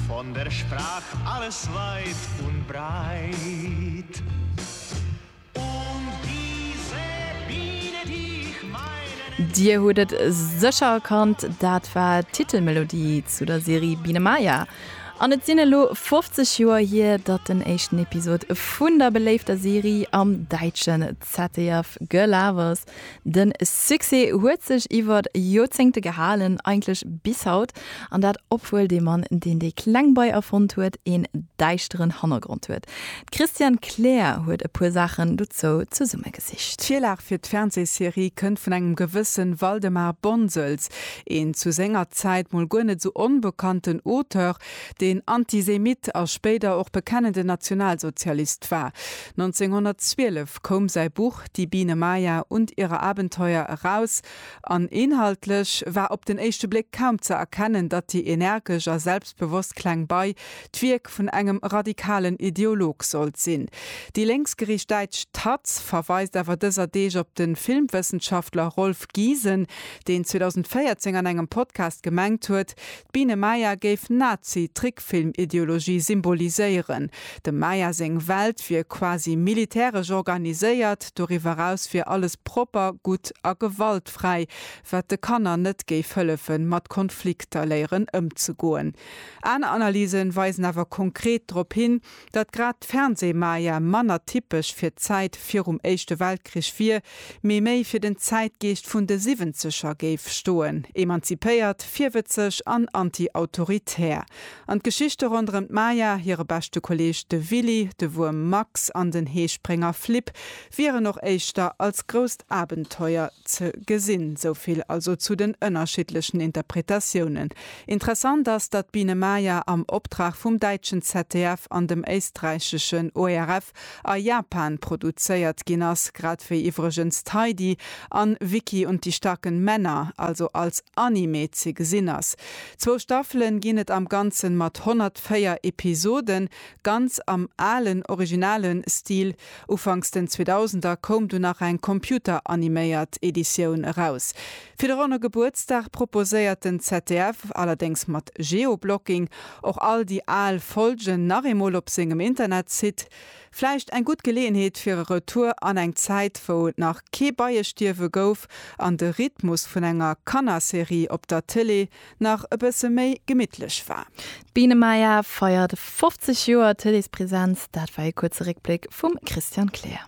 Von der Sprach alles weit und breit Und diese Biene, die ich meine Dir hutt et sécher erkannt, dat war d'Titelmelodie zu der Serie Biene Maya. An et sinn elo 50 Joer hier, datt den éischten Episod vun der beléifter Serie am däitschen ZDF gelaf ass. Den Succès huet sech iwwert Joerzéngte gehalen, eigentlech bis haut, an dat obwuel dee Mann, deen dee kleng Bei erfonnt huet, een däischteren Hannergrond huet. D'Christiane Kleer huet e puer Saachen dozou zesummegesicht. D'Virlag fir d'Fernsehserie kënnt vun engem gewëssen Waldemar Bonsels, een zu senger Zäit mol guer net sou onbekannten Auteur, deen Antisemit a spéider och bekennenden Nationalsozialist war. 1912 koum säi Buch Die Biene Maya und ihre Abenteuer eraus, an inhaltlech war op den éischte Bléck kaum ze erkennen, datt déi energesch a selbstbewosst kleng Bei d'Wierk vun engem radikalen Ideolog sollt sinn. Déi lénksgeriicht däitsch taz verweist awer dëser Deeg op de Filmwëssenschaftler Rolf Giesen, deen 2014 an engem Podcast gemengt huet, D'Biene Maya géif Nazi-Trickfilm-Ideologie symboliséieren. Dem Maya seng Welt wier quasi militäresch organiséiert, doriwwer eraus wier alles propper, gutt a gewaltfräi, wat de Kanner net géif hëllefe mat Konflikter léieren ëmzegoen. Aner Analyse weisen awer konkret drop hin, Datt grad d'Fernsehmaja manner typesch fir d'Zäit virum Éischte Weltkrich wier, mee méi fir den Zäitgeescht vun de Siwwenzeger géif stoen, emanzipéiert, virwëtzeg an anti-autoritär. An d'Geschichte ronderëm d'Maja, hire beschte Kolleeg de Willy, de Wuerm Max an den Heesprénger Flip wieren och éischter als grousst Abenteuer ze gesinn. Souvill also zu den ënnerschiddlechen Interpretatiounen. Interessant ass, datt d'Biene Maya am Optrag vum däitschen ZDF an dem éisträicheschen ORF a Japan produzéiert ginn ass, grad wéi iwwregens d'Heidi an Vicky und die starken Männer also als Anime ze gesinn ass. Zwou Staffelen ginn et am Ganzen mat 104 Episoden, ganz am alen, originalen Stil. Ufanks den Zweedausender koum du nach eng computeraniméiert Editioun eraus. Fir de ronne Gebuertsdag proposéiert den ZDF, allerdéngs mat Geoblocking, och all déi al Folgen nach eemol op sengem Internetsite. Vläicht eng gutt Geleeënheet fir e Retour an eng Zäit, wou et nach kee Beiestierwe gouf an de Rhythmus vun enger Kannerserie op der Tëlee nach e bësse méi gemittlech war. D'Biene Maya feiert 50 Joer Tëleespresenz, dat war ee kuerze Réckbléck vum Christian Kleer.